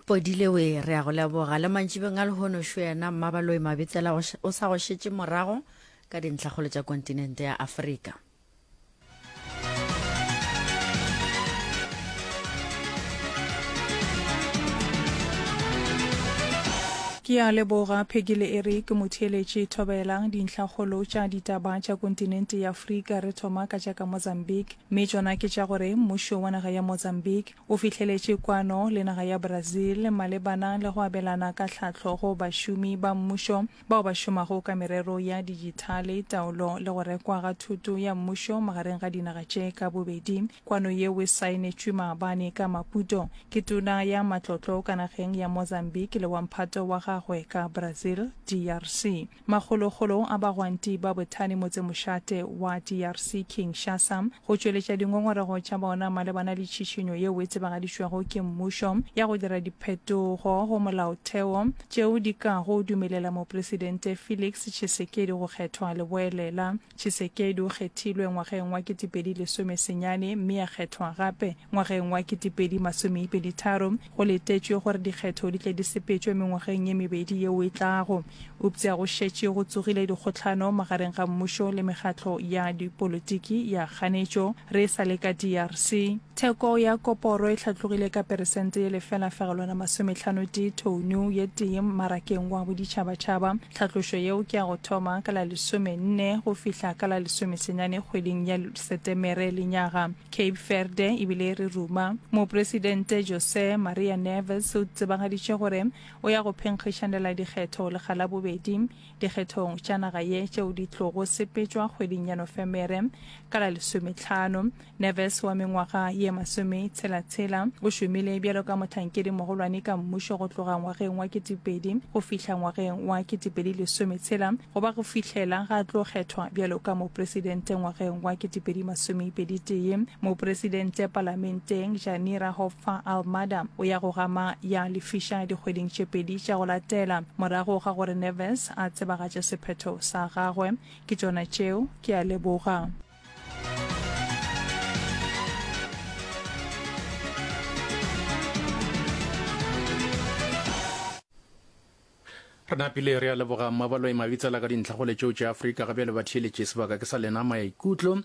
podile we re ya go leboga le mantšibeng a lehono šo yena mmabaloi mabitsela o sa go šetše morago ka dintlhakgolo tša kontinente ya afrika ke a leboga phekile e re ke motheeletše thobelang dintlhakgolo tša ditaba tša kontinente ya afrika re thoma ka tša ka mozambique mme tšona ke tša gore mmušo wa naga ya Mozambique o fihleletše kwano le naga ya Brazil malebana le go abelana ka tlhahlo go bašomi ba mmušo bao ba šomago ka merero ya dijithale, taolo le go rekwa ga thuto ya mmušo magareng ga dinaga tše ka bobedi. Kwano yeo e saenetšwe maabane ka Maputo ke tona ya matlotlo ka nageng ya Mozambique le wa mphato wa gagwe ka Brazil, DRC. Makgolokgolong a bagwanti ba bothani motsemošate wa DRC, Kinshasa, go tšweletša dingongorego tša bona malebana le tšhišinyo yeo e tsebagaditšwego ke mmušo ya go dira diphetogo go molaotheo tšeo di kago dumelela Mopresidente Felix Tshisekedi go kgethwa leboelela Tshisekedi o kgethilwe ngwageng wa ketepedi lesome senyane mme a kgethwa gape ngwageng wa ketepedi masomeipedi tharo. Go letetšwe gore dikgetho di tle di sepetšwe mengwageng ye mebedi yeo e tlago. Euptsa go šetše go tsogile dikgohlano magareng ga mmušo le mekgatlo ya dipolotiki ya kganetšo re e sa le ka DRC. Theko ya koporo e hlatlogile ka peresente ye lefela fegelwana masomehlanotee thoune ye tee mmarakeng wa boditšhabatšhaba. Tlhatlošo yeo ke ya go thoma ka la lesome nne go fihla ka la lesome senyane kgweding ya Setemere lenyaga. Cape Verde e bile e re ruma. Mopresidente José Maria Neves o tsebagaditše gore o ya go phenkgišanela dikgetho lekga la bobedi dikgethong tša naga ye tšeo di tlogo sepetšwa kgweding ya Nofemere ka la lesometlhano. Neves wa mengwaga ye masome tshela tshela o šomile bjalo ka mohlankedi mogolwane ka mmušo go tloga ngwageng wa ketipedi go fihla ngwageng wa ketipedi lesome tshela go ba go fihlela ga tlo kgethwa bjalo ka mopresidente ngwageng wa ketipedi masome pedi tee mopresidente palamenteng Janira Hoffa Almada o ya go gama ya lefiša dikgweding tše pedi tša go latela morago ga gore Neves a tsebagatše sephetho sa gagwe ke tšona tšeo ke a leboga re napile re a leboga mmabalo e mabitsela ka dintlha go letseo tša afrika gabe le batheeletše sebaka ke sa lena maikutlo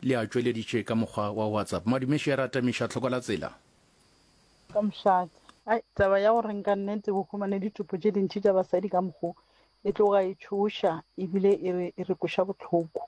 le a tšweleditše ka mokgwa wa whatsapp madumeši ya ratamiša tlhoko la tsela ka mošate ai taba ya gore nka nnete go humane ditopo tše dintši tša basadi ka mokgo e tloga e tšhoša ebile e re e re koša botlhoko